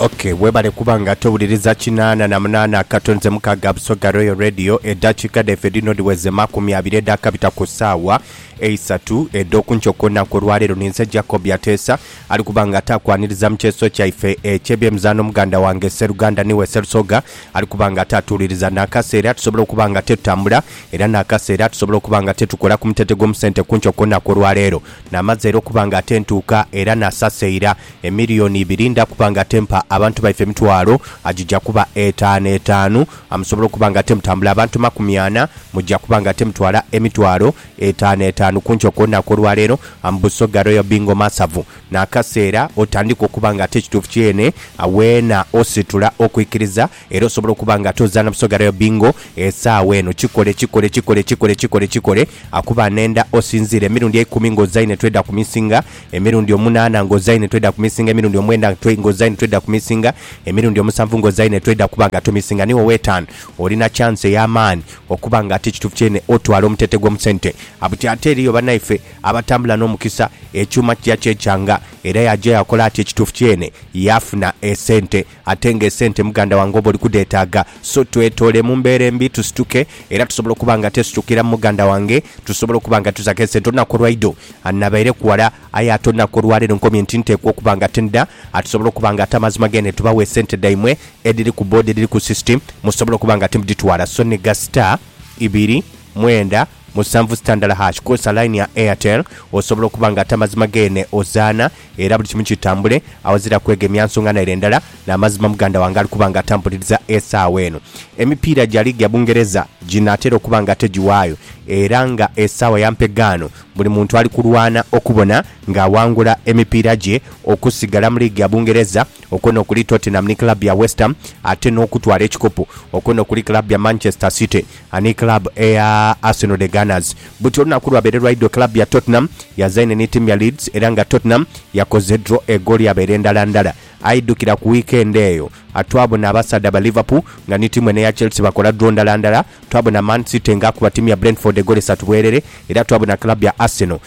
ok webale kuba nga towuliriza kinaana na munaana akato nze mukaaga busoga royal radio eddakiika dhaife dhino dhiweze makumi abiri edhaakabita ku ssaawa eisatu edh'okunkya okw'olunaku olwaleero ninze jacob yateesa ali kuba nga ataakwaniriza mu kyeso kyaife eky'ebyemizaano muganda wange sseruganda niwe sserusoga ali kuba nga ataatuwuliriza n'akaseera tusobola okuba nga tetutambula era n'akaseera tusobola okuba nga tetukola ku mutete gw'omusente kunkya okw'olunaku olwaleero Naamaze era okuba nga ate ntuuka era naasasa eira emiliyoni ibiri ndha kuba nga ate mpa abantu baife emitwalo agija kuba etaanu etaanu. Amusobola okuba nga ate mutambula abantu makumi ana, muja kuba nga ate mutwala emitwalo etaanu etaanu ku nkyo ku lunaku olwaleero. Am Busoga Royal Bingo Masavu n'akaseera otandika okuba nga ate ekituufu kyeene weena ositula okwikiriza Era osobola okuba nga ate ozaana Busoga Royal Bingo esaawa eno. Kikole, kikole, kikole, kikole, kikole, kikole. Akuba anenda osinziira emirundi eikumi nga ozaine tweda ku misinga, emirundi omunaana nga ozaine tweda ku misinga, emirundi omwenda nga ozaine tweda ku misinga, emirundi omusanvu nga ozaine tweda kuba nga tomisinga ni ow'etaanu olina chance ey'amaani okuba nga ate ekituufu kyeene otwala omutete gw'omu sente. A Buti ate eriyo banaife abatambula n'omukisa ekyuuma kija kyekyanga era yaja yakola ati ekituufu kyeene yaafuna esente. Ate nga esente muganda wange oba oli kudheetaaga, so twetoole mu mbeera embi tusituke era tusobola okuba nga twesitukira mu muganda wange tusobole okuba nga tuzaku esente olunaku olwaidho. Nabaire kuwala aye ate olunaku olwaleero nkomye nti nteekwa okuba nga tindha atusobola okuba nga ate amazima gene tubawe esente dhaimwe edhiri ku boda edhiri ku system musobole okuba nga timudhitwala so ni ga star, ibiri, mwenda, Musanvu sita ndala hash kozesa line ya Airtel osobola okuba nga atamazima geene ozaana era buli kimu kitambule awazira kwegemya nsonga naire ndala namazima muganda wange ali kuba nga atampuliriza esaawa eno emipiira gya liigi ya Bungereza ginaatera okuba nga tegiwaayo era nga esaawa ya mpegaano buli muntu ali kulwana okubona nga awangula emipiira gye okusigala mu liigi ya Bungereza okwo nokuli Tottenham ni club ya Westham ate nokutwala ekikopo okwo nokuli club ya Manchester City Ani club eya Arsenal the Gunners? Buti olunaku lwabaire lwaidho club ya Tottenham yazaine ni team ya Leeds era nga Tottenham yakoze draw egooli yabaire ndala ndala. Aidhukira ku weekend eyo twabona abasaadha ba Liverpool nga ni team eno eya Chelsea bakola draw ndala ndala, twabona Man City nga akuba team ya Brentford egooli isatu bwerere era twabona club ya Arsenal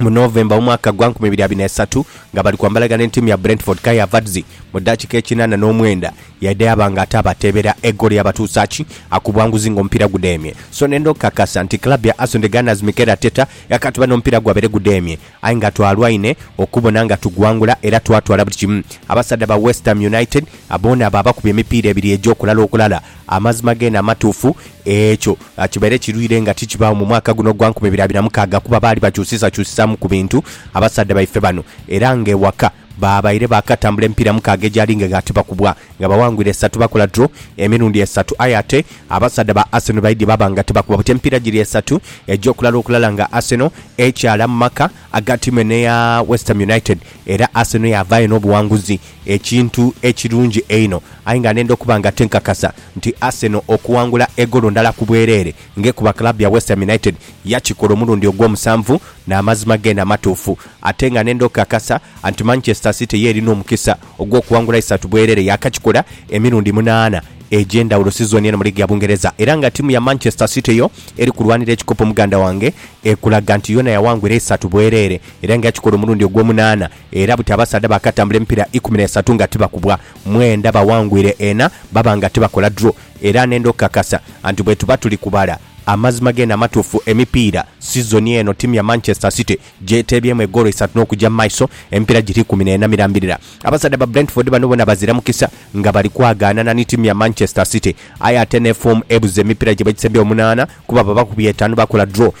mu November omwaka gwa nkumi ibiri abiri na isatu nga bali kwambalagana ni tiimu ya Brentford, Kai Havertz mu dakika ekinana n'omwenda yaidha yaaba nga ate abateebera egoolo eyabatuusa ki akubwa nguzi nga omupiira gudheemye. So ne ndhokakasa nti club ya Arsenal the Gunners Mikel Arteta yakatuba n'omupiira gwabaire gudheemye aye nga twalwaine okubona nga tugwangula era twatwala buli kimu abasaadha ba Westham United boona baabakubya emipiira ebiri egy'okulala okulala Amazima geene amatuufu, ekyo kibaire kirwire nga tikibaagho mu mwaka guno ogwa nkumi ibiri abiri na mukaaga, kuba baali bakyusisakyusisaamu ku bintu, abasaadha baife bano, era ng'ewaka baabaire baakatambula emipiira mukaaga egyali ng'eghati bakubwa nga bawangwire esatu bakola draw emirundi esatu aye ate abasaadha ba Arsenal baidhye baaba nga tibakuba buti emipiira giri esatu egy'okulala okulala nga Arsenal ekyaala mu maka aga tiimu eno eya West Ham United era Arsenal yaavaayo n'obuwanguzi ekintu ekirungi einho aye nga nenda okuba nga tinkakasa nti Arsenal okuwangula egolo ndala ku bwereere ng'ekuba club ya West Ham United yakikola omulundi ogw'omusanvu n'amazima geene amatuufu ate nga nenda okukakasa nti Manchester City yo erina omukisa ogw'okuwangula isatu bwereere yaakakikola emirundi munaana egy'endhawulo sizoni eno mu liigi ya Bungereza era nga tiimu ya Manchester City yo eri kulwanira ekikopo muganda wange ekulaga nti yoona yawangula eisatu bwereere era nga yakikola omulundi ogw'omunaana era buti abasaadha baakatambula emipiira ikumi n'esatu nga tibakubwa, mwenda bawangwire ena baba nga tibakola draw era nenda okukakasa nti bwetuba tuli kubala amazima geene amatuufu emipiira sizoni eno ttiimu ya Manchester City gyeteebyemu egoolo isatu n'okugya mu maiso emipiira giri ikumi n'ena mirambirira. Abasaadha ba Brentford bano boona bazira mukisa nga bali kwagaanana ni ttiimu ya Manchester City Aye ate n'efoomu ebuze emipiira gye bakisembye omunaana kuba babakubye etaanu bakola draw.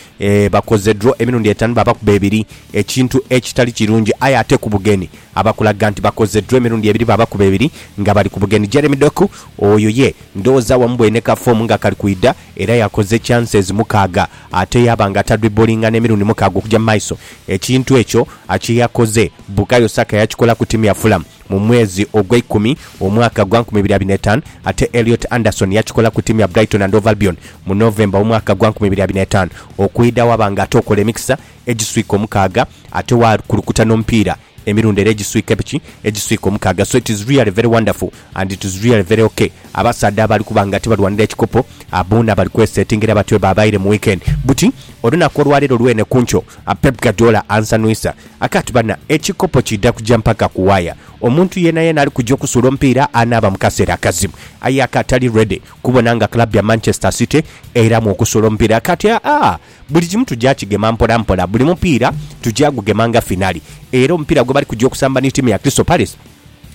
Bakoze draw emirundi etaanu baabakuba ebiri ekintu ekitali kirungi aye ate ku bugenyi abakulaga nti bakoze draw emirundi ebiri baabakuba ebiri nga bali ku bugenyi. Jeremy Doku oyo ye ndowooza wamubwoine ne ka foomu nga kali kwidha era yakoze chances mukaaga ate yaaba nga tadwibbolinga n'emirundi mukaaga okugya mu maiso. Ekintu ekyo kye yakoze Bukayo Saka yakikola ku ttiimu ya Fulham. mu mwezi ogweikumi omwaka gwa nkumi ibiri abiri n'etaanu, ate Elliot Anderson yakikola ku tiimu ya Brighton and Hove Albion mu November w'omwaka gwa nkumi ibiri abiri n'etaanu. Okwidha waba nga ate okola emikisa egiswika omukaaga ate wakulukuta n'omupiira emirundi era egiswika epiki egiswika omukaaga so it is really very wonderful and it is really very ok. Abasaadha abali kuba nga ate balwanira ekikopo boona bali kwesetingira batyo bwebabaire mu weekend buti olunaku olwaleero lwene kunkyo. A Pep Guardiola ansanhuisa. A Kati bana, ekikopo kiidha kuja mpaka ku waya. Omuntu yeenayeena ali kuja okusuula omupiira anaaba mu kaseera akazibu. Aye a Kati ali ready kubona nga club ya Manchester City eiramu okusuula omupiira. A Kati, Aah, buli kimu tuja kigema mpola mpola. Buli mupiira tuja gugema nga finale. Era omupiira gwebali kuja okusamba ni tiimu ya Crystal Palace,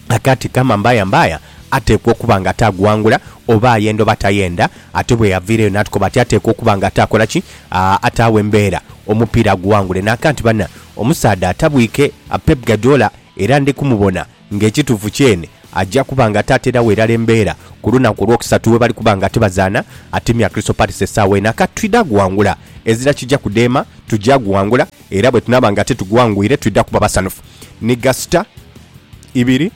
A Kati, kama mbaya mbaya. ateekwa okuba nga ataaguwangula, oba ayenda oba tayenda. Ate bwe yaviirayo n'atukoba ati ateekwa okuba nga ataakola ki? Ataagho embeera omupiira aguwangule. Naaka nti banna, omusaadha atabwike Pep Guardiola era ndi kumubona ng'ekituufu kyene aja kuba nga ataateeragho irala embeera ku lunaku Olwokusatu webali kuba nga tibazaana ttiimu ya Crystal Palace esaawa eno. Aka twidha guwangula, ezira kija kudheema, tugya guwangula. Era bwe tunaaba nga titugwangwire, twidha kuba basanhufu. Ni gasita ibiri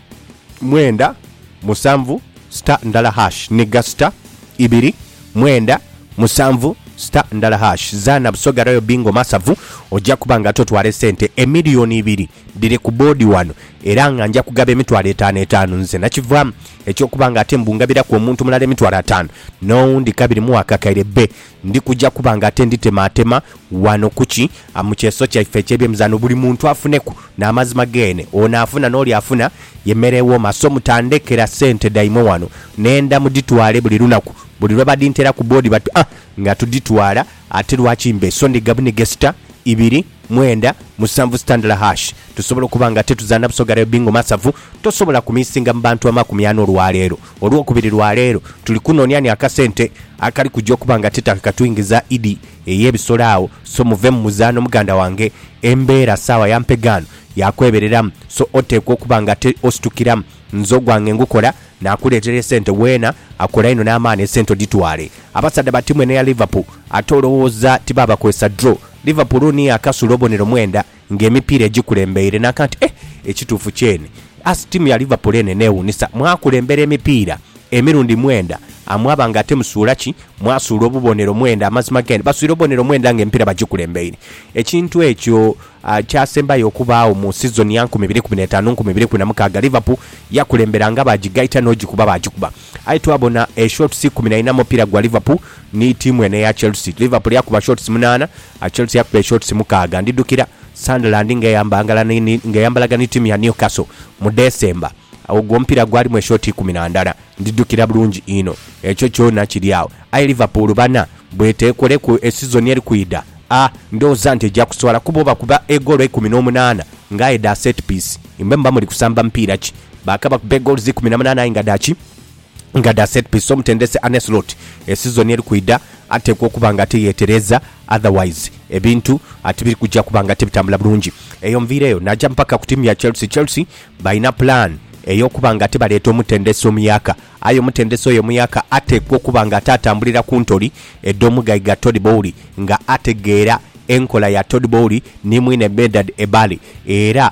mwenda musanvu sita ndala hash Ni gasita ibiri mwenda musanvu sita ndala hash Zaana Busoga Royal Bingo Masavu ojja kuba nga totwala esente emiliyoni ibiri dhiri ku boodi wano era nga nja kugaba emitwalo etaanu etaanu nze nakivaamu eky'okuba nga ate mbu ngabiraku omuntu mulala emitwalo ataanu n'owundi kabiri muwa akakaire be Ndi kuja kuba nga ate nditemaatema ghano ku ki, mu kyeso kyaife eky'ebyemizaanho, buli muntu afuneku n'amazima geene. Ono afuna n'oli afuna ye mere ewooma. So mutandhekera sente dhaimwe ghano. Nenda mudhitwale buli lunaku. Buli lwe badhintera ku boodi bati, Ah, nga tudhitwala, ate lwaki mbe? So ndi gabunige sita, ibiri, mwenda, musanvu sitandala hash. Tusobola okuba nga ate tuzaana busoga rugby ng'omasavu, tosobola kumiisinga mu bantu amakumi ana olwaleero. Olwokubiri lwa leero tuli kunoonia ni akasente akali kuja okuba nga ti takakatwingiza Idi ey'ebisolo agho, so muve mu muzaano muganda wange. Embeera saawa ya mpegaano ya kwebereramu, so oteekwa okuba nga ate ositukiramu. Nze ogwange ngukola, naakuleetera esente weena, akola inho n'amaani esente odhitwale. Abasaadha ba tiimu eno eya Liverpool ate olowooza tibaabakozesa draw? Liverpool niyo akasula obonero mwenda. Nga emipiira egikulembeire n'aka nti, Eh, ekituufu kyene! As tiimu ya Liverpool eno eneewuunisa, mwakulembera emipiira emirundi mwenda, mwaba nga ate musuula ki? Mwasuula obubonero mwenda. Amazima g'eno, baswire obubonero mwenda nga emipiira bagikulembeire. Ekintu ekyo kyasembayo okubaagho mu sizoni ya nkumi ibiri kumi n'etaanu nkumi ibiri kumi na mukaaga. Liverpool yakulembera nga baagigaita n'ogikuba baagikuba. Aye twabona e shots ikumi na ina mu mupiira gwa Liverpool ni tiimu eno eya Chelsea. Liverpool yakuba shots munaana. Chelsea yakuba eshots mukaaga. Ndidhukira Sunderland ng'eyambalaga ni tiimu ya Newcastle mu December. Ogwo omupiira gwalimu eshoti ikumi na ndala. Ndidhukira bulungi inho. Ekyo kyona kiri agho. Aye Liverpool bana, bw'eteekoleku esizoni eri kwidha, a ndhooza nti eja kuswala kuba obakuba egoolo eikumi n'omunaana nga aye dha set piece. Imwe muba muli kusamba mupiira ki? Baakabakuba egoolo z'ikumi na munaana aye nga dha ki? Nga dha set piece, omutendesi Arne Slot esizoni eri kwidha ateekwa okuba nga ate yeetereeza otherwise ebintu ati biri kuja kuba nga tibitambula bulungi. Eyo nviireyo naaja mpaka ku ttiimu ya Chelsea. Chelsea balina pulaani ey'okuba nga ate baleeta omutendesi omuyaka aye omutendesi oyo omuyaka ateekwa okuba nga ate atambulira ku ntoli edh'omugaiga Todd Boehly nga ategeera enkola ya Todd Boehly ni mwine Medad Ebaly era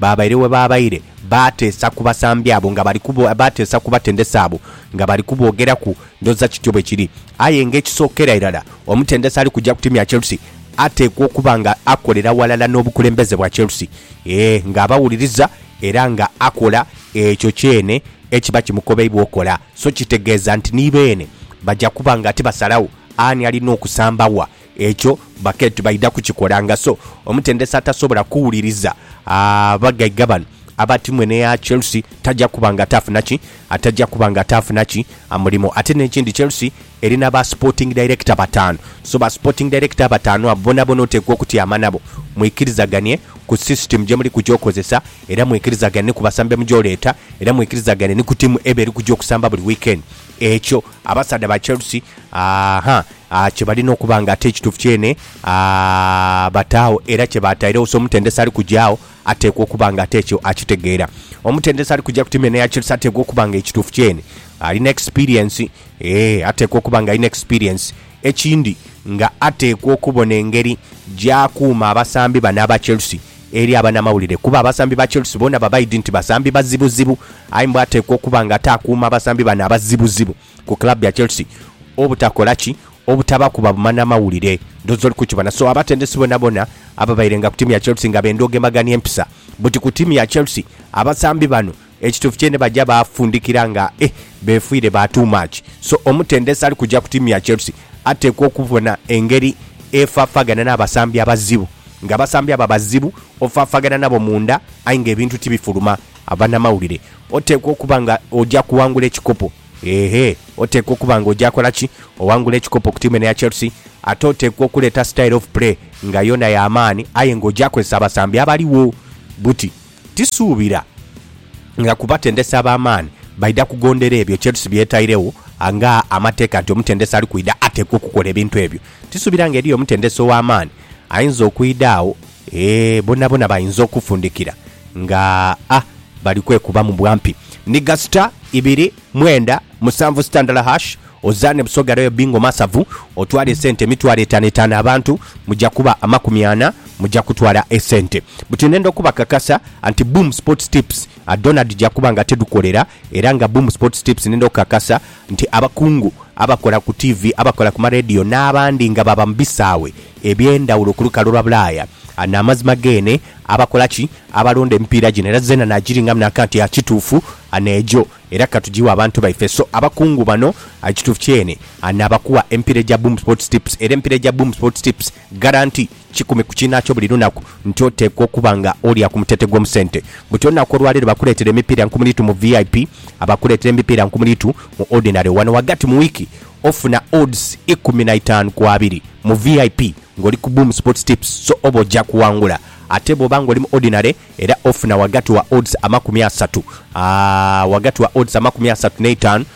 Baabaire we baabaire, baateesa ku basambi abo nga bali kubo, baateesa ku batendesi abo nga bali kuboogeraku. Ndhooza kityo bwe kiri. Aye ng'ekisookera irala, omutendesi ali kuja ku tiimu ya Chelsea ateekwa okuba nga akolera ghalala n'obukulembeze bwa Chelsea, ee, ng'abawuliriza era nga akola ekyo kyene ekiba kimukobeibwa okola. So kitegeeza nti ni beene baja kuba nga tibasalagho ani alina okusamba wa. Ekyo bakea tibaidha kukikola nga so omutendesi atasobola kuwuliriza abagaiga bano aba tiimu eno eya Chelsea taja kuba nga ataafuna ki ataja kuba nga ataafuna ki mulimo. Ate n'ekindi Chelsea erina ba sporting director bataanu, so ba sporting director abataanu abo bonabona oteekwa okutyama nabo mwikirizaganie ku system gyemuli kuja okozesa era mwikirizagane ni ku basambi be muja oleeta era mwikirizagane ni ku tiimu eba eri kuja okusamba buli weekend. Ekyo abasaadha ba Chelsea, aahaa, a kye balina okuba nga ate ekituufu kyene a bataagho era kye baatairegho. So omutendesi ali kuja agho ateekwa okuba nga ate ekyo akitegeera. Omutendesi ali kuja ku tiimu eno eya Chelsea ateekwa okuba nga ekituufu kyene alina ekisipiriensi. Ee, ateekwa okuba nga alina ekisipiriensi. Ekindi nga ateekwa okubona engeri gy'akuuma abasambi bano aba Chelsea eri abanamawulire kuba abasambi ba Chelsea boona babaidi nti basambi bazibuzibu aye mbwa ateekwa okuba nga ate akuuma abasambi bano abazibuzibu. ku club ya Chelsea obutakola ki? Obutaba kuba bumana mawulire. Ndhooza oli kukibona. So abatendesi bonabona ababairenga ku tiimu ya Chelsea nga benda ogemagania empisa buti ku tiimu ya Chelsea, abasambi bano ekituufu kyene baja baafundikira nga e beefiire ba too much. So omutendesi ali kuja ku tiimu ya Chelsea ateekwa okubona engeri efaafagana n'abasambi abazibu. Nga abasambi abo abazibu ofaafaagana nabo munda aye nga ebintu tibifuluma. Abanamawulire. Oteekwa okuba nga oja kuwangula ekikopo. Ehe, oteekwa okuba nga oja kola ki? Owangula ekikopo ku tiimu eno eya Chelsea. Ate oteekwa okuleeta style of play nga yoona ya maani aye nga oja kozesa abasambi abaligho. Buti, tisuubira nga ku batendesi ab'amaani baidha kugondera ebyo Chelsea by'etairegho nga amateeka nti omutendesi ali kwidha ateekwa okukola ebintu ebyo. Tisuubira nga eriyo omutendesi ow'amaani ayinza okwidha agho Eeh bonabona bainza okufundikira nga a bali kwekubamu bwampi. Nhiga star ibiri mwenda musanvu sitandala hash ozaane Busoga Royal Bingo masavu otwale esente emitwalo etano etano abantu muja kuba amakumi ana muja kutwala esente buti nenda okubakakasa anti Boom Sports Tips dhona dhija kuba nga tidhukolera era nga Boom Sports Tips nenda okukakasa nti abakungu abakola ku tiivi, abakola ku maleediyo n'abandi nga baba mu bisaawe eby'endhawulo ku lukalu lwa Bulaaya n'amazima geene abakola ki? Abalonda emipiira gino era zeena naagiringamu n'aka nti a kituufu a n'egyo era ka tugighe abantu baife. So abakungu bano a ekituufu kyeene a naabakuwa emipiira egya Boom Sports Tips era emipiira egya Boom Sports Tips, Garanti, Kikumi ku kiinaakyo buli lunaku nti oteekwa okuba nga olya ku muteete gw'omu sente. Buti olunaku olwaleero bakuleetera emipiira nkumuliitu mu VIP, abakuleetera emipiira nkumuliitu mu Ordinary. Wano ghagati mu wiiki ofuna odds ikumi na itaanu ku abiri mu VIP ng'oli ku Boom Sports Tips so oba oja kuwangula. Ate bw'oba ng'oli mu Ordinary era ofuna ghagati wa odds amakumi asatu, aa, ghagati wa odds amakumi asatu n'eitaanu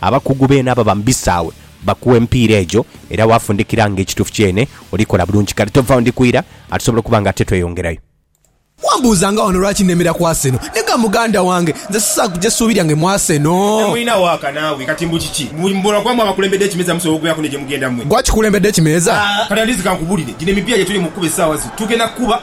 Abakugu beene ababa mu bisaawe bakuwa empiira egyo era waafundikira nga ekituufu kyeene olikola bulungi. Kale tovaawo ndi kwira ate tusobole okuba nga ate tweyongerayo. Wambuuza nga wano lwaki nnemera ku Arsenal. Naye ga muganda wange, nze sisaaku gye ssuubi lyange mu Arsenal. Naye mwinagho aka naawe kati mbu kiki? Mbu mbu lwakuba mwe abakulembedde ekimeeza musobola okugeraku ni gye mugenda mwe. Gwe akikulembedde ekimeeza? Aah kati at least kankubulire, gino emipiira gye tuli mu kukuba essaawa zino tugenda kukuba.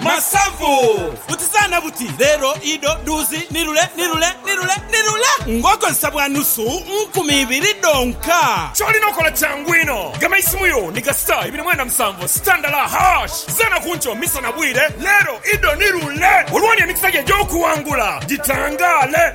Masavu! Butizaana buti, leero, idho, dhuuzi, ni lule, ni lule, ni lule, ni lule! Ng'okozesa bwa nusu nkumi ibiri dhonka. Ky'olina okola kyangu inho, gema eisimu yo ni ga star ibiri mwenda musanvu star ndala hash. Zaana ku nkyo, misa na bwire, leero, idho, ni lule! Olwoono emikisa gyo egy'okuwangula gitangaale!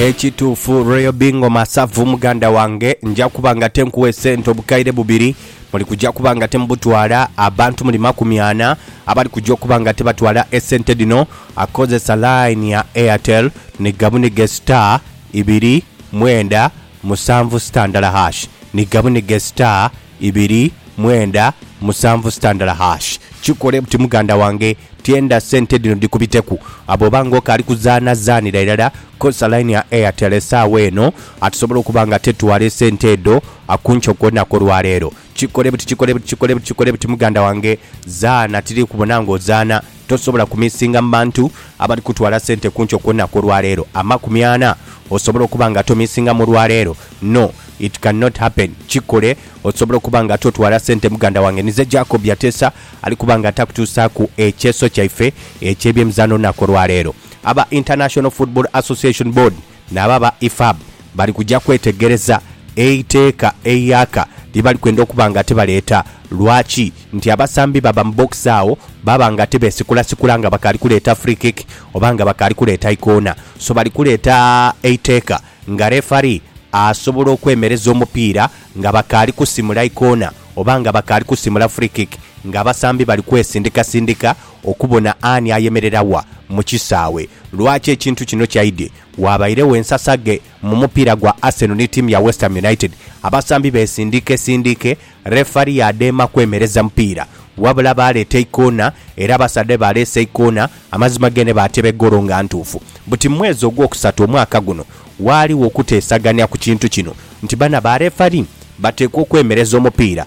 Ekituufu Royal Bingo Masavu muganda wange nja kuba nga tenkuwe sente obukaire bubiri muli kuja kuba nga temubutwala abantu muli makumi ana abali kuja okuba nga tebatwala esente dhino akozesa line ya Airtel ni gabunige star ibiri mwenda musanvu sitandala hash ni gabunige star ibiri mwenda musanvu sitandala hash kikole buti muganda wange tyenda sente dhino dhikubiteku bwoba nga okaali kuzaana zaanira irala kozesa line ya Airtel esaawa eno tusobole okuba nga tetwala esente edho kunkyo kwonaku olwaleero kikole buti kikole buti kikole buti kikole buti muganda wange zaana tiri kubona nga ozaana Tosobola kumisinga mu bantu abali kutwala sente ku nkyo ku lunaku olwaleero, amakumi ana. Osobola okuba nga tomisingamu olwaleero. No, it can not happen. Kikole. Osobola okuba nga totwala sente muganda wange nize Jacob yateesa, ali kuba nga takutuusaaku ekyeeso kyaife eky'ebyemizaano olunaku olwaleero. Aba International Football Association Board. Nabo aba IFAB bali kuja kwetegereza eiteeka eiaka lye bali kwenda okuba nga tibaleeta. Lwaki? Nti abasambi baba mu bokisi agho baba nga tibeesikulasikula nga bakaali kuleeta free kick oba nga bakaali kuleeta ikoona. So bali kuleeta eiteeka nga referee asobola okwemereza omupiira nga bakaali kusimula ikoona oba nga bakaali kusimula free kick ng'abasambi bali kwesindikasindika okubona ani ayemerera wa mu kisaawe. Lwaki ekintu kino kyaidye? Waabairegho ensasaghe mu mupiira gwa Arsenal ni tiimu ya West Ham United, abasambi beesindiikesiindiike, refari yaadheema kwemereza mupiira. Wabula baaleeta eikoona era abasaadha bwe baaleese eikoona, amazima geene baateeba egoolo nga ntuufu. Buti mu mwezi ogwokusatu omwaka guno, waaligho okuteesagania ku kintu kino nti bano abarefari bateekwa okwemereza omupiira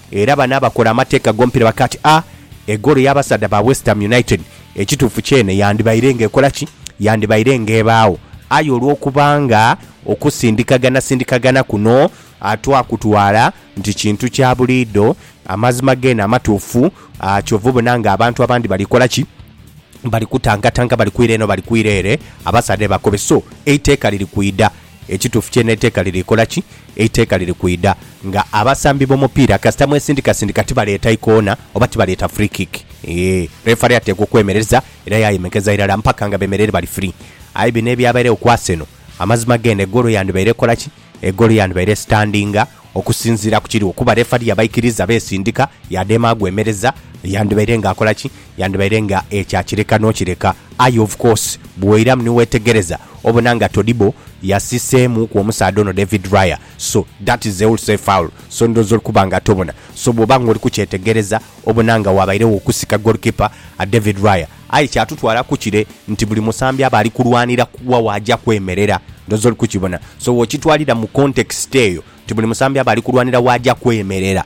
Era bano abakola amateeka g'omupiira bakaaba ati, A, egoolo y'abasaadha ba West Ham United ekituufu kyene yandibaire ng'ekola ki? Yandibaire ng'ebaagho. Aye olw'okuba nga okusindikaganasindikagana kuno twakutwala nti kintu kya buliidho, amazima geene amatuufu, kyova obona ng'abantu abandi bali kola ki? Bali kutangatanga, bali kwira eno, bali kwira ere, abasaadha ni bakobe. So, eiteeka liri kwidha Ekituufu kye n'eiteeka liri kola ki? Eiteeka liri kwidha nga abasambi b'omupiira kasita mwesindikasindika tibaleeta ikoona oba tibaleeta free kick. Yee, refari ateekwa okwemereza era yaayemekeza irala mpaka nga bemereire bali free. Aye bino ebyabairegho ku Arsenal, amazima geene egoolo yandibaire ekola ki? Egoolo yandibaire esitandinga okusinziira ku kiriwo kuba refari yabaikiriza beesindika, yaadema agwemereza, yandibaire ng'akola ki? Yandibaire nga ekya kireka n'okireka, aye of course bw'oiramu ni weetegereza obona nga Todibo yasiseemuuku omusaadha ono David Raya so that is a wholesale foul so ndhooza oli kuba nga tobona so bw'oba nga oli kukyetegereza obona nga waabairegho okusika goalkeeper David Raya aye kyatutwaalaku kire nti buli musambi aba ali kulwanira wa waaja kwemerera ndhooza oli kukibona so w'okitwalira mu context eyo nti buli musambi aba ali kulwanira waaja kwemerera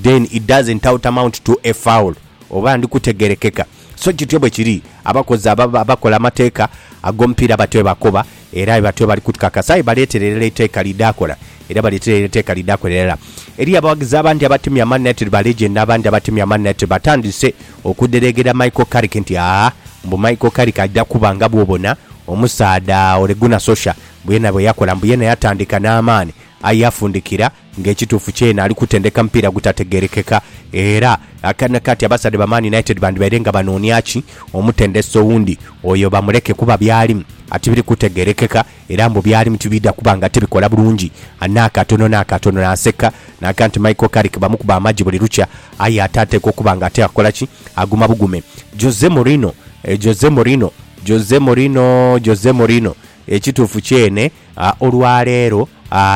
then it doesn't out amount to a foul. Oba ndi kutegerekeka? So kityo bwe kiri. Abakozi aba, abakola amateeka ag'omupiira batyo bwe bakoba, era batyo bwe bali kutukakasa. Aye baleetera irala eiteeka lidhaakola, era baleetera irala eiteeka lidhaakola irala. Eriyo abaghagizi abandi abatemya amanhina tiri ba legend, n'abandi abatemya amanhina tiri. Batandise okudhereegera Michael Carrick nti, Aa, mbu Michael Carrick aja kuba nga bw'obona omusaadha Ole Gunnar Solskjaer, mbu yena bwe yakola, mbu yena yatandika n'amaani, aye yafundikira. Nga ekituufu kyeene ali kutendeka mupiira gutategeerekeka era akaana kati abasadha ba Man United bandibaire nga banoonia ki omutendesi owundi oyo bamuleke kuba by'alimu atibiri kutegeerekeka era mbu by'alimu tibiidha kuba nga tibikola bulungi n'akatono n'akatono. Naaseka naaga nti Michael Carrick bamukuba amagi buli lukya aye ate ateekwa okuba nga ate akola ki? Aguma bugume. Jose Mourinho, Jose Mourinho, Jose Mourinho, Jose Mourinho, Ekituufu kyeene Olwa leero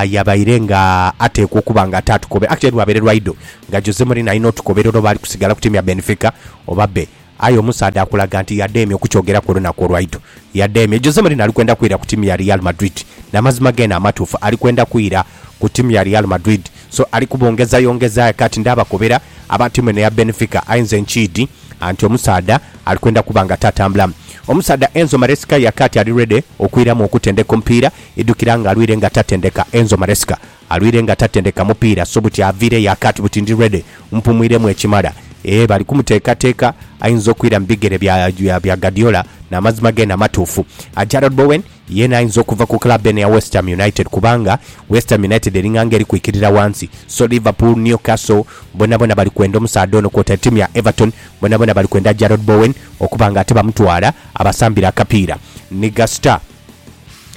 yabaire nga ateekwa okuba nga ate atukobe aye lwabaire lwaidho nga Jose Mourinho alina otukobera oba ali kusigala ku tiimu ya Benfica oba be. Aye omusaadha akulaga nti yadheemye okukyogeraku olunaku olwaidho. Yadheemye. Jose Mourinho ali kwenda kwira ku tiimu ya Real Madrid. N'amazima geene amatuufu ali kwenda kwira ku tiimu ya Real Madrid. So ali kubongezayongeza kati ndha abakobera aba tiimu eno eya Benfica aye nze nkiidhi. anti omusaadha ali kwenda kuba nga tatambula. Omusaadha Enzo Maresca yakaati ali ready okwiramu okutendeka omupiira. Idhukira nga alwire nga tatendeka Enzo Maresca alwire nga tatendeka mupiira so buti aviire yakaati buti ndi ready mpumwiremu ekimala. Eeh bali kumuteekateeka ayinza okwira mu bigere bya Guardiola n'amazima geene amatuufu. Jarrod Bowen. Yeena ayinza okuva ku club eno eya West Ham United kubanga West Ham United eringa nga eri kwikirira wansi so Liverpool, Newcastle bonabona bali kwenda omusaadha ono kwotaire tiimu ya Everton bonabona bali kwenda Jarrod Bowen okuba nga ate bamutwala abasambire akapiira ni ga star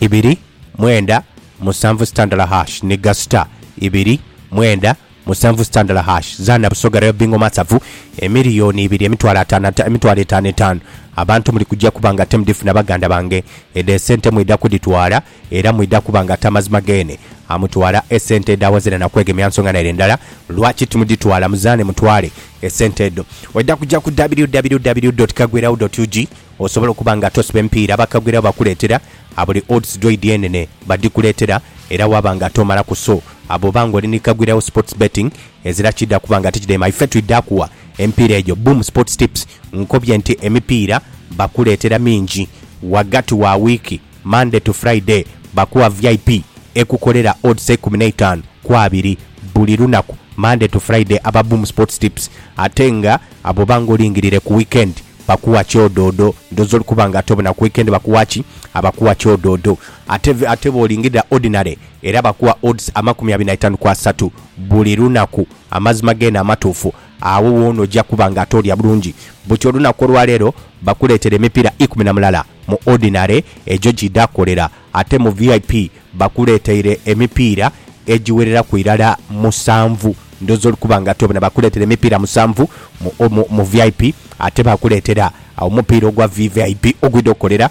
ibiri mwenda musanvu sitandala hash ni ga star ibiri mwenda Musanvu sitandala hash zaana Busoga Rail Bingo Masavu emiriyoni ibiri emitwalo ataano ata emitwalo etaano etaano Abantu muli kuja kuba nga temudifuna baganda bange Edho esente mwidha kudhitwala era mwidha kuba nga tamazima geene amutwala esente edho awazira na kwegemya nsonga naire ndala Lwaki timudhitwala muzaane mutwale esente edho Oidha kuja ku www dot kagwiragho dot ug osobola okuba nga tosiba emipiira bakagwiragho bakuleetera a buli odds dhoidi enene badhikuleetera era waba nga tomalaku so Abo oba nga oli ni kagwira wo sports betting ezira kidha kuba nga tikidhaima ife twidha kuwa emipiira egyo boom sports tips nkobye nti emipiira bakuleetera mingi ghagati wa wiiki Monday to Friday bakuwa vip ekukolera odds eikumi n'eitaanu ku abiri buli lunaku Monday to Friday aba boom sports tips ate nga abo oba nga olingirire ku weekend bakuwa kyodoodo ndhooza oli kuba nga ate obona ku weekend bakuwa ki? abakuwa kyodoodo ate ate bwolingirira ordinary Era bakuwa odds amakumi abiri na itaanu ku asatu buli lunaku, amazima geene amatuufu, agho woona oja kuba nga ate olya bulungi. Buti olunaku olwa leero bakuleetera emipiira ikumi na mulala. Mu Ordinary egyo giidha kukolera, ate mu VIP bakuleeteire emipiira egiwereraku irala musanvu. Ndhooza oli kuba nga ate obona bakuleetera emipiira musanvu mu, mu, mu VIP, ate bakuleetera omupiira ogwa VVIP ogwidha okukolera.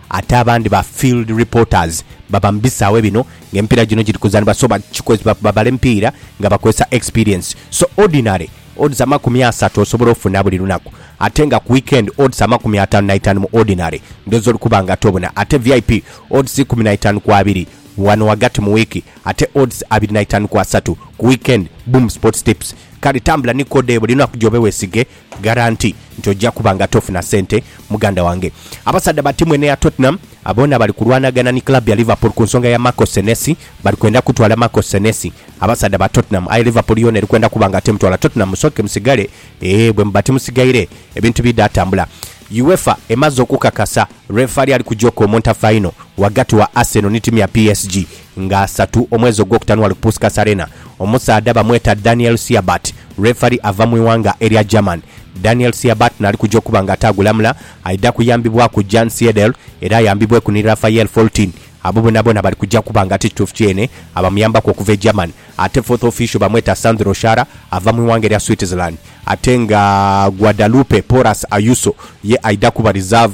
ate abandi ba field reporters baba mu bisaawe bino nga emipiira gino giri kuzanibwa so babala emipiira nga bakozesa experience so ordinary odds amakumi asatu osobola ofuna buli lunaku ate nga ku weekend odds amakumi ataanu naitaanu mu ordinary ndhooza oli kuba nga tobuna ate vip odds ikumi naitaanu ku abiri wano wagati mu wiiki ate odds abiri naitaanu ku asatu ku weekend boom sports tips kale tambula ni code eyo buli lunaku gyobe wesige Garanti nti ojja kuba nga tofuna sente muganda wange. Abasaadha ba tiimu eno eya Tottenham boona bali kulwanagana ni club ya Liverpool ku nsonga ya Marco Senesi. Bali kwenda kutwala Marco Senesi abasaadha ba Tottenham aye Liverpool yoona eri kwenda kuba nga temutwala. Tottenham musooke musigale ee bwemuba timusigaire ebintu bidha tambula. Uefa emaze okukakasa lwefali ali kuja okomonta fayino ghagati wa Arsenal ni tiimu ya PSG nga asatu omwezi ogwokutanu ghali ku Puskas Arena, omusaadha bamweta Daniel Siabat, referee ava mu ighanga erya German. Daniel Siabat nali kuja okuba nga ate agulamula, aidha kuyambibwaku Jan Siedel era ayambibweku ni Raphael Foltin. Abo bonabona bali kuja kuba nga ate kituufu kyene abamuyambaku okuva e German. Ate fourth official bamweta Sandro Schara ava mu ighanga erya Switzerland ate nga Guadalupe Porras Ayuso ye aidha kuba reserve.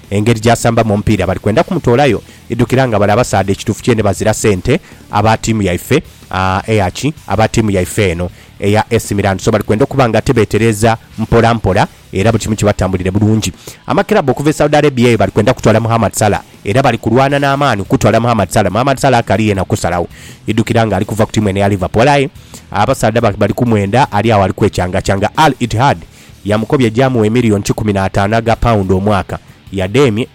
Engeri gy'asambamu omupiira bali kwenda kumutoolayo idhukira nga bali abasaadha ekituufu kyene bazira sente aba ttiimu yaife eya ki? Aba ttiimu yaife eno eya AC Milan. So bali kwenda okuba nga ate beetereeza mpola mpola era buli kimu kibatambulire bulungi. Amakirabbu okuva e Saudi Arabia eyo bali kwenda kutwala Mohammad Salah era bali kulwana n'amaani okutwala Mohammad Salah. Mohammad Salah akali yena kusalagho idhukira nga ali kuva ku ttiimu eno eya Liverpool aye abasaadha bali kumwenda ali agho ali kwecangacaanga. Al Ittihad yamukobya gy'amuwa emiliyoni kikumi na ataanu aga paundi omwaka. Yadheemye.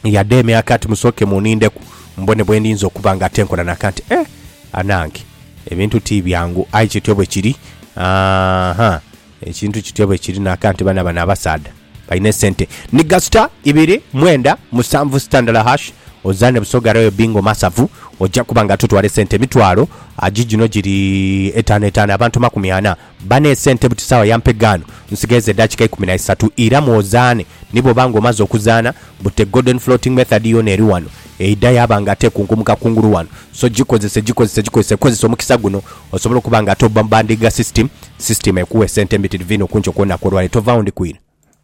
Yadheemye aka ati, Musooke munindeku mbone bwe ndinza okuba nga ate nkola naka nti, Eh! Anange! Ebintu ti byangu. Aye kityo bwe kiri. Aa-ha! Ekintu kityo bwe kiri naka nti baana bano abasaadha balina esente. Nhiga star ibiri mwenda musanvu sitandala hash ozaane Busoga Royal Bingo Masavu oja kuba nga totwala esente emitwalo agi gino giri etaano etaano abantu makumi ana Bane sente buti sawa yampe gano nsigaiza edakika ikumi na isatu ira mwozaane ni bwoba nga omaze okuzaana but the golden floating method yona eri wano eidha yaba nga ate ekunkumuka kungulu wano so gikozese gikozese gikozese kozesa omukisa guno osobole okuba nga ate obba mu bandiiga system system ekuwe sente mbitirivu inho kunkyo kwonaku olwaleero tovaawo ndi kwira.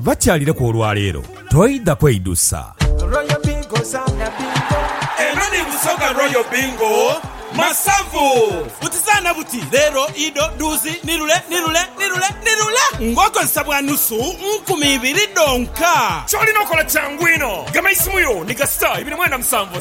Bakyalireku olwaleero toidha kweidusa. Royal Bingo zaana bingo. Eno ni Busoga Royal Bingo Masavu. Buti zaana buti, leero, ido, dhuuzi, ni lule, ni lule, ni lule, ni lule ng'okozesa bwa nusu nkumi ibiri dhonka. Ky'olina okola kyangu inho. Gema eisimu yo ni gasita ibiri mwenda musanvu.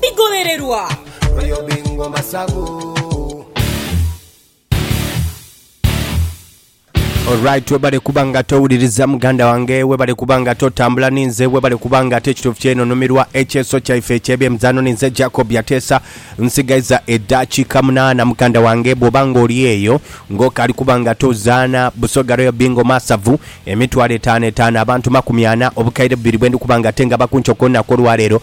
bigobererwa. Royal Bingo Masavu. Alright webale kuba nga towuliriza muganda wange webale kuba nga totambula ninze webale kuba nga ate ekituufu kyeno numirwa ekyeso kyaife ekyebyemizano ninze Jacob yateesa nsigaiza edakiika munaana muganda wange bwoba nga oli eyo ngokali kuba nga tozaana busoga royal bingo masavu emitwalo etaano etaano abantu makumi ana obukaire bubiri bwendi kuba nga tenga bakunkyo kolunaku olwaleero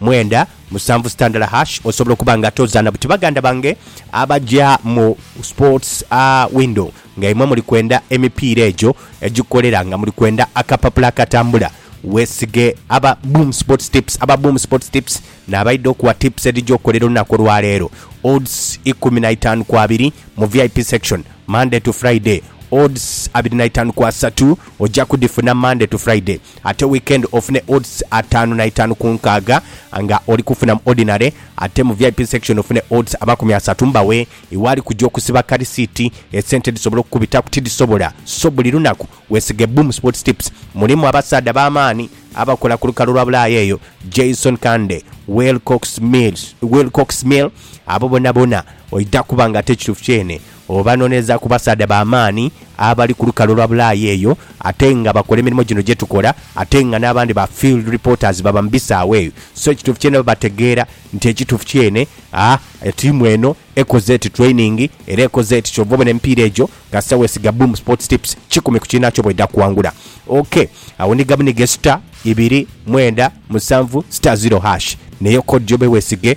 Mwenda, musanvu sitandala hash osobola okuba nga tozaana buti baganda bange abaja mu sports a window nga imwe muli kwenda emipiira egyo egikolera nga muli kwenda akapapula akatambula weesige aba Boom Sports Tips Aba Boom Sports Tips n'abaidha okuwa tips edhija okukolera olunaku olwaleero Odds ikumi na itaanu ku abiri mu vip section Monday to Friday Odds abiri na itaanu ku asatu oja kudhifuna Monday to Friday Ate weekend ofune odds ataanu na itaanu ku nkaaga nga oli kufuna mu Ordinary ate mu vip section ofune odds amakumi asatu mbawe iwe ali kuja okusiba kalisiiti esente dhisobole okukubitaku tidhisobola so buli lunaku wesige Boom Sports Tips mulimu abasaadha b'amaani abakola ku lukalu lwa Bulaaya eyo Jason Kande, Will Cox Mill abo bonabona oidha kuba nga ate kituufu kyene. Obanoneza ku basaadha ba maani abali ku lukalu olwa Bulaaya eyo ate nga bakola emirimo gino gye tukola ate nga n'abandi ba field reporters baba mu bisaawe eyo. So ekituufu kyene babategeera nti ekituufu kyene a tiimu eno ekoze eti training era ekoze eti kyova obona emipiira egyo kasita wesiga Boom Sports Tips kikumi ku kiinakyo bwedha kuwangula. Ok awo ni gabunige star ibiri mwenda musanvu star zero hash neyo code yo bwewesige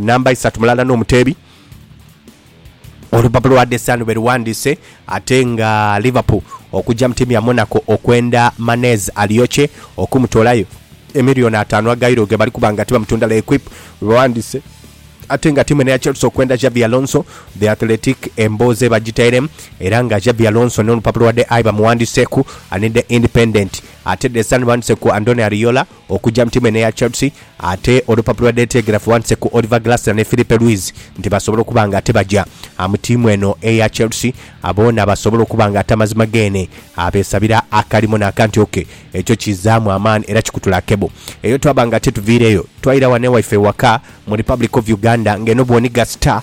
Namba isatu mulala n'omuteebi Olupapula lwa The Sun bweruwandiise ate nga Liverpool okujja mu tiimu ya Monaco okwenda Manez Alioche okumutoolayo emiliyoni ataanu aga Euro gebali kuba nga tibamutunda L'Equipe bwebawandiise ate nga tiimu eno eya Chelsea okwenda Xabi Alonso The Athletic emboozi ebagitairemu era nga Xabi Alonso n'olupapula lwa The Eye bamuwandiiseeku ni The Independent ate The Sun bawandiise ku Andoni Ariola Okujja mu tiimu eno eya Chelsea ate olupapula lwa Daily Telegraph wandhise ku Oliver Glasner ni Filipe Luis nti basobola okuba nga ate baja mu tiimu eno eya Chelsea boona basobola okuba nga ate amazima geene beesabira akalimu n'akanti ok ekyo kizaamu amaani era kikutula kebo eyo twaba nga ate tuviireyo twaira wano ewaife ewaka mu Republic of Uganda nga eno bw'onigha star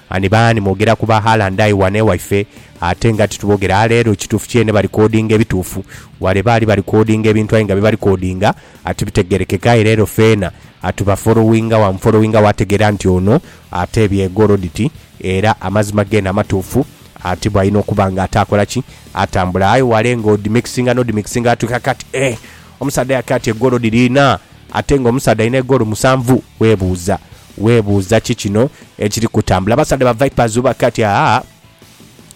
Ani baani mwogera ku ba Haaland aye wano ewaife ate nga titubogera a leero kituufu kyene ba recordinga ebituufu wale baali ba recordinga ebintu aye nga bye ba recordinga a tibitegerekeka aye leero feena a tuba followinga wa mu followinga wategeera nti ono ate bye goroditi era amazima geene amatuufu a ti bwalina okuba nga ate akola ki atambula aye wale nga odi mixinga no di mixinga atu kakati eeh omusaadha yakati egolodi liina Ate nga omusaadha alina egoolo musanvu? Webuuza. Webuuza ki kino ekiri kutambula. Abasaadha ba Vipers bubake ati aa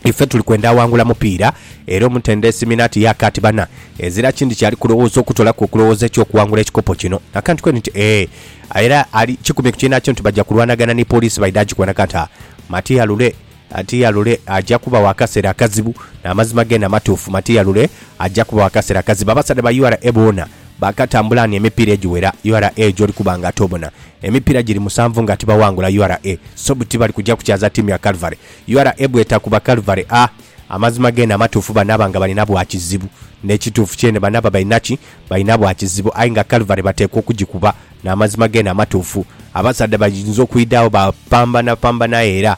Ife tuli kwenda awangula mupiira era omutendesi Minnaert Yak ati bana ezira kindi kyali kulowooza okutoolaku okulowooza eky'okuwangula ekikopo kino. Akantu kweni nti ee era ali kikumye ku kiina kyo nti baja kulwanagana ni Police baidha gikwana kati aa Matia Lule Atiyalule aja kubawo akasera akazibu namazima gena matuufu matiyalule aja kubawo akasera akazibu abasadha ba ura boona bakatambula ni emipira ejiwera ura joli kuba nga tobona emipira jiri musanvu nga tibawangula ura so buti bali kuja kukyaza tiimu ya Calvary ura bweta kuba Calvary a Amazima gena amatuufu banaba nga balina bwa kizibu nekituufu kyene banaba balina ki balina bwa kizibu aye nga Calvary batekwa okujikuba namazima gena amatuufu abasadha bayinza okwidagho ba pambana pambana aye era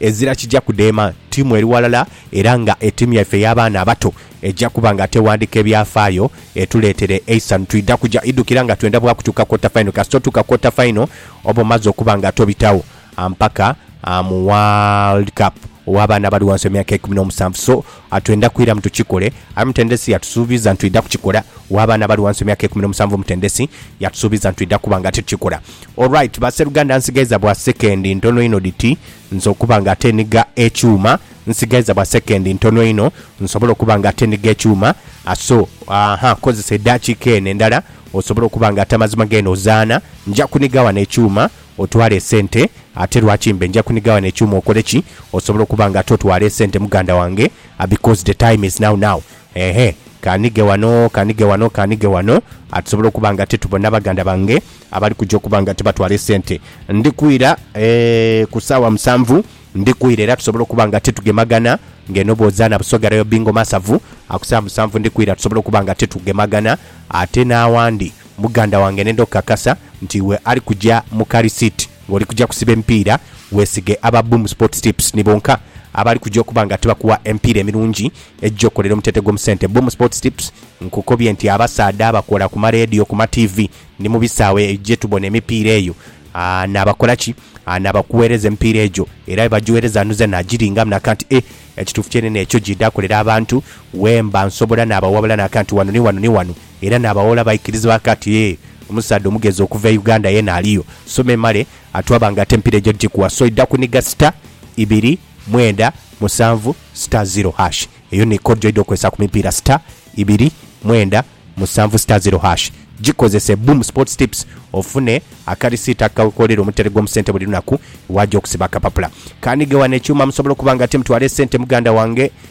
Ezira kija kudheema ttiimu eri ghalala era nga ettiimu yaife ey'abaana abato eja kuba nga tewandika ebyafaayo etuleetere eisanhu. Twidha kuja idhukira nga twenda bwa kutuuka quarter final. Kasita otuuka quarter final oba omaze okuba nga tobitagho ampaka mu World Cup ow'abaana abali ghansi w'emyaka eikumi n'omusanvu. So, A Twendha kwiramu tukikole. Aye omutendesi yatusuubiza nti twidha kukikola. W'abaana abali ghansi w'emyaka eikumi n'omusanvu omutendesi yatusuubiza nti twidha kuba nga tukikola. Alright baseruganda nsigaiza bwa sekendi ntono inho dhiti nze okuba nga ate nhiga ekyuma. Nsigaiza bwa sekendi ntono inho nsobole okuba nga ate nhiga ekyuma. A So, aaha, kozesa edaakiika eno endala osobole okuba nga ate amazima g'eno zaana. Nja kuniga ghano ekyuma Otwala esente ate lwaki mbe nja kuniga wano ekyuma okole ki osobola okuba nga ate otwala esente muganda wange because the time is now now eehh kanige wano kanige wano kanige wano atusobole okuba nga ate tubona baganda bange abali kuja okuba nga ate batwala esente ndi kwira eehh ku saawa musanvu ndi kwira era tusobole okuba nga ate tugemagana nga eno bwozana busoga rayo bingo masavu aku saawa musanvu ndi kwira tusobole okuba nga ate tugemagana ate nawandi Muganda wange nenda okukakasa nti iwe ali kuja mu kari seat nga oli kuja kusiba emipiira, weesige aba Boom Sports Tips ni bonka abali kuja okuba nga tibakuwa emipiira emirungi egija okukolera omutete gwo mu sente. Boom Sports Tips nkukobye nti abasaadha abakola ku maleediyo, ku matiivi ni mu bisaawe gye tubona emipiira eyo n'abakola ki? n'abakuweereza emipiira egyo era bwe bagiweereza nuze nagiringamu n'aka nti e, ekituufu kyenene ekyo gy'idha kolera abantu, wemba nsobola n'abawabula n'aka nti wano ni wano ni wano. Era naabawoola baikiriza bake ati ee omusaadha omugezi okuva e Uganda yena aliyo. Soma emale atu abange ate empira ejo njikuwa so idha kuniga star ibiri mwenda musanvu star zero hash eyo ni code joidha okozesa ku mipiira star ibiri mwenda musanvu star zero hash jikozese boom sports tips ofune akarisiiti akakoolera omutale gwomu sente buli lunaku waja okusiba akapapula kanige wano ekyuuma musobola okuba nga timutwala esente muganda wange